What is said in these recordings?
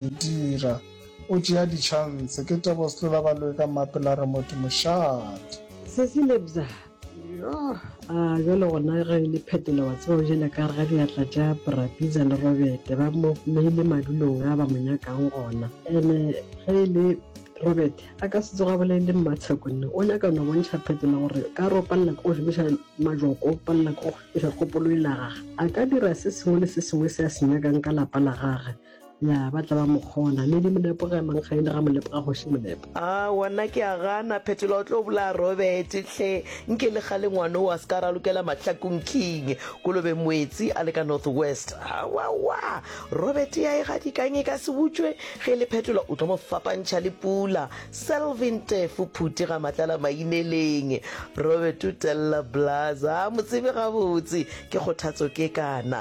dira o tšea di chance ke tebo setlola ba loe ka mmape la re motho mošate. Sesi lebza yoh a jwale gona ge le phetola wa tseba o jela ka ga diatla tša brapiza le robete ba mo meile madulong a ba mo nyakang gona ene ge e le robete a ka se tsoga bolele mmatsheko nne o nyaka no bontšha phetola gore ka ro palela ke go šomiša majoko palela ke go šomiša kgopolo e lagaga a ka dira se sengwe le se sengwe se a se nyakang ka lapa la gage ya ba tla ba mo kgona le di molepo ga emang ga e le ga molepo ga goši molepo a wana ke a gana phetola o tlo bolaya robert hle nke le ga lengwane o a se ka ra lokela mahlakong king kolobe moetsi a le ka north west awawa robert ya e gadikang e ka se butswe ge le phetola o tlo mo fapantšha le pula selvin tefo phuti ga matlala maineleng robert o telela blaza a mo tsebe gabotse ke kgothatso ke kana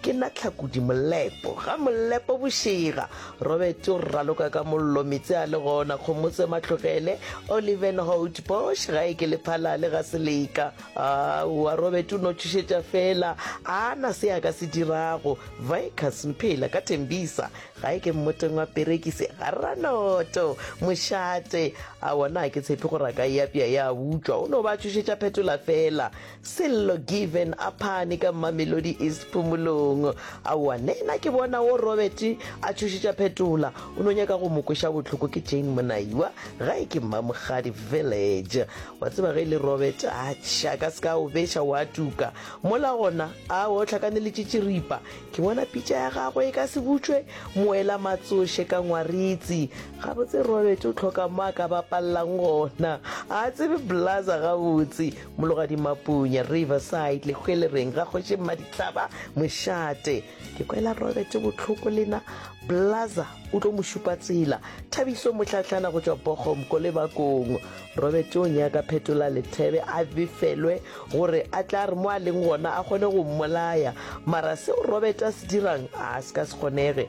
Ke na Tlhakudi Molepo. Ga Molepo bošega. Robert o raloka ka mollo, Metse a le gona, Kgomotse Matlogele, Oliven Hout, Bosch ga e ke le Phalale ga Seleka. Aowa, Robert o no tšhošetša fela, a na se a ka se dirago. Vickers, Mphela, ka Thembisa, ga e ke mmoteng wa Perekise, ga Ranoto, Mošate, aowa na ke tshepe gore a ka e apea ya butšwa, o no ba tšhošetša phetola fela. Sello Given a phane ka Mamelodi East phumolong. Aowa, nena ke bona wo Robert a tšhošetša phetola, o no nyaka go mo kweša bohloko ke Jane Monaiwa, gae ke Mmamogadi Village. Wa tseba ge e le Robert, atšha, ka se ka o beša wa tuka. Mola gona, aowa, o hlakaneletše tširipa. Ke bona pitša ya gagwe e ka se butšwe moela matsoše ka ngwaritsi. Gabotse Robert o hloka mo a ka bapallang gona. A tsebe Blaza gabotse. Mologadi Mapunya, Riverside, le hwele reng ga kgoši Mmaditlaba mošate. Ke kwela Robert botlhoko lena Blaza o tlo mo šupa tsela. Thabiso Mohlahlana go tšwa Bogom ko lebakong. Robert o nyaka phetola lethebe a befelwe gore a tla re mo a leng gona a kgone go mmolaya. Mara seo Robert a se dirang a se ka se kgonege.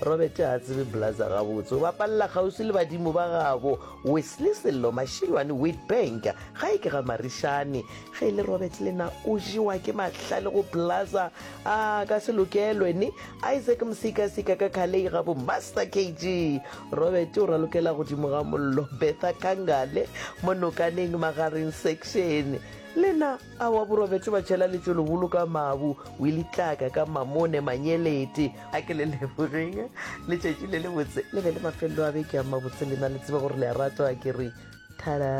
Robert ga a tsebe Blaza gabotse, o bapalela kgauswi le badimo ba gabo Wesley Sello Mashilwane Witbank gae ke ga Marishane. Ge e le Robert le na o jewa ke mahlale go Blaza a ka se lokelwe ni Isaac Msikasika ka Khalei gabo Master KG. Robert o ralokela godimo ga mollo Bertha Kangale mo Nokaneng Magareng Section le na Aowa borobetše ba tšhela letšo leholo ka mabu, Willie Tlaka ka mamone manyelete. A ke le lebogeng letšatši le le botse le be le mafelelo a beke a mabotse lena le tsebe gore le a ratwa ke re thara.